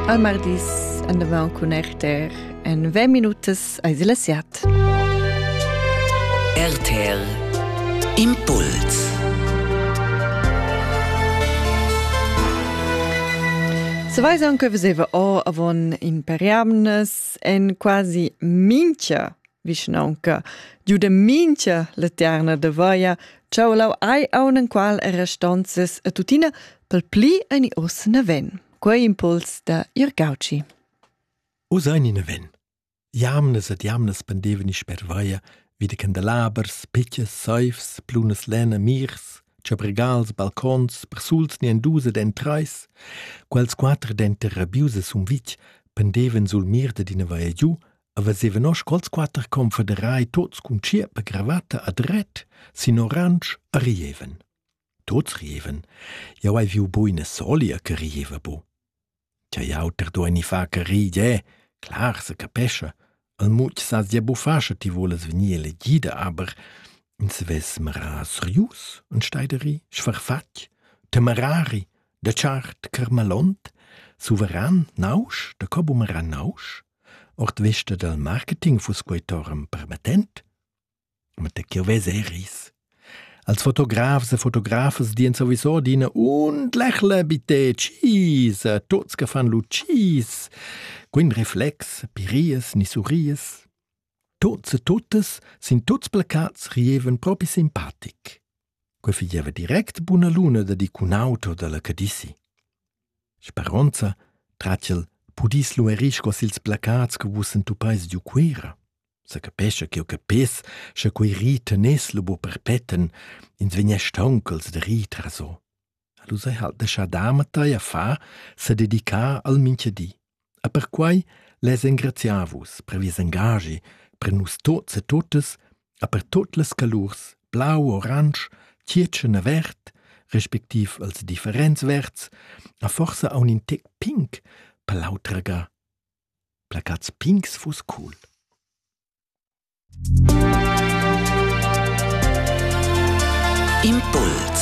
Al mardis andavan cun RTR en ve minutas ais il siat. RTL Impuls Se weiß anche, was eva o avon imperiamnes en quasi mincha Vischnaunca giuda mincha laterna da vaia, ch'au lau ai aunan qual era stanzas a tuttina pel pli ani os naven. Quei impuls da Irgauci. O sein in aven. Jamnes et jamnes pendeveni sper vaia, wie de candelabers, pitches, seifs, plunas lena, mirs, chabregals, balcons, persuls ni enduse den treis, quels quater denter rabiuse sum vitg pendeven sul mir de dina vaia giu, Aveva noss cols quatter confederai tuts cun tschierp e cravatta a dret sin oransch e rieven. Tuts rieven. Jau hai viu buina solia che rieva bu. Tja jau ter dueni fa che ride, clar se capescha. El much sas dia bufascha ti volas venir elegida, aber in se ves mera serius, un steideri, schfarfatg, temerari, de chart kermalont, souveran nausch, de cobumera nausch, Ord vesta dal marketing fuss quei torum permettent? Ma da ch'jeu vess eris. Als fotografs e fotografas dien sowieso adina undlächle bitte cheese, tots che fan lu cheese. Quin reflex, pirias ni surries. Tots e tuttas sin tuts placats rieven propi simpatic. Quei figeva direct buna luna da di cun auto dalla Cadici. Speronza tratg el pudis luerir sco sils placats che vus entupeis giu Cuera. Sa capescha ch'jeu capess, sche quei ri teness lu buca perpetten, ins vegness stauncals da rir traso. Lu sai halt deschar damatei a far, sededicar al mincha di. E perquai lez engraziar vus per vies engaschi, per nus tots e tuttas e per tot las calurs blau, oransch, tgietschen e verd, respektiv als differents verds, a forsa aun in tec pink per l'autraga. Placats pinks fuss cool. Impuls